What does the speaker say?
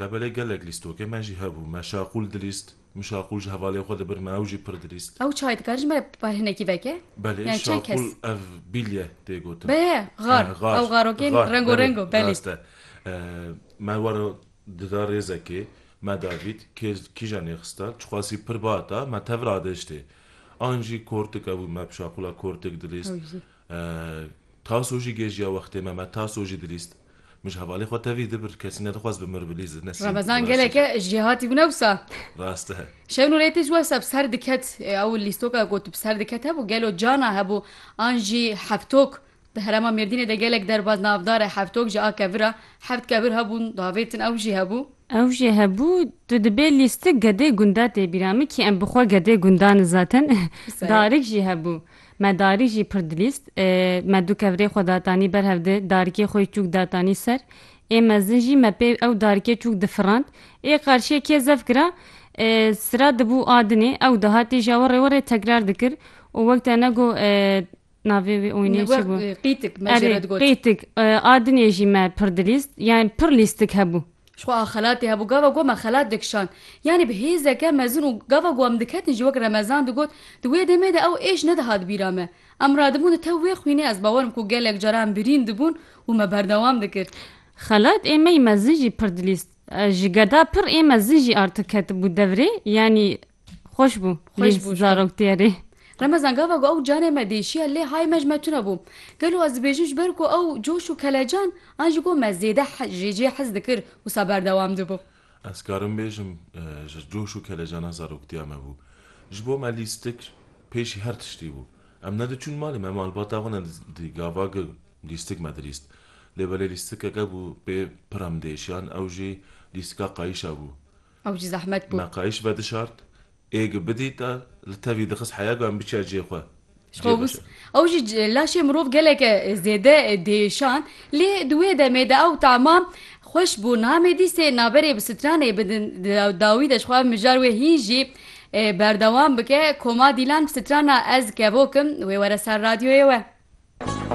Labelê gelek lîstokê me jî hebû. Me şaqûl dilîst. Min şaqûl ji hevalên xwe di bir me ew jî pir dilîst. Ew çayê dikare ji me bar hinekî veke? Belê şaqûl ev bîlye tê gotin. Be ye xar. Ew xarokên rengo rengo belê. Rast e. Me were dida rêzekê me davît kê kîjan nêxistan çixwasî pir bata me tevir adêjtê. An jî kortik hebû me bi şaqûla kortik dilîst. Taso jî gêjiya wextê me me taso jî dilîst. Min ji hevalê xwe tevî di bir kesî nedixwaz bi mir bilîz di nesîn. Remezan geleke jê hatî bûne wisa. Rast e. Şewn û rêtê ji we se bi ser diket. Ew lîstoka ku tu bi ser diket hebû gelo cana hebû an jî heftok. Di herêma Mêrdînê de gelek derbaz navdar e heftok ji a kevir a. Heft kevir hebûn davêtin ew jî hebû. Ew jî hebû. Tu dibê lîstik gedê gunda tê bîra min kî em bi xwe gedê gunda nizatin. Darik jî hebû. Me darî jî pir dilîst. Me du kevirê xwe datanî ber hev di darikê xwe yî çûk datanî ser. Ê mezin jî me pê ew darikê çûk difirand. Ê qarşiyê kê zef gira sira dibû a dinê. Ew dihatî ji awe rê we rê tekrar dikir û wek te ne got navê wê oynê çi bû? Qîtik me jê re digot. Qîtik. A dinê jî me pir dilîst. Yani pir lîstik hebû. Ji xwe a xelatê hebû, gava ku me xelat dikişand, yanî bi hêzeke mezin û gava ku em diketin jî wek Remezan digot, di wê demê de ew êş nedihat bîra me. Em radibûn di tev wê xwînê ez bawer im ku gelek cara em birîn dibûn û me berdewam dikir. Xelat ê me yî mezin jî pir dilîst. Ji geda pir ê mezin jî artik ketibû devrê, yanî Xweş bû. Xweş bû. Zarok tiyarê. Remezan gava ku ew carê me dêşiya lê hay me ji me tune bû. Gelo ez dibêjim ji ber ku ew coş û kelecan an ji ku me zêde jê cê hez dikir wisa berdewam dibû. Ez karim bêjim ji coş û kelecana zaroktiya me bû. Ji bo me lîstik pêşî her tiştî bû. Em ne diçûn malê me malbata xwe ne di gava ku lîstik me dilîst. Lê belê lîstikeke bû pê pir em dêşiyan ew jî lîstika qayîşa bû. Ew jî zehmet bû. Meqayîş vedişart, êgî bidît a li tevî dixist heya ku em biçiya cihê xwe. Ji xwe wis. Ew jî laşê mirov geleke zêde diêşand. Lê di wê demê de ew tahma xweş bû. Namê dîsê naberê bi stranê bidin di dawî de ji xwe mijar wê hîn jî berdewam bike. Koma Dîlan strana Ez kevok im wê were ser radyoyê we.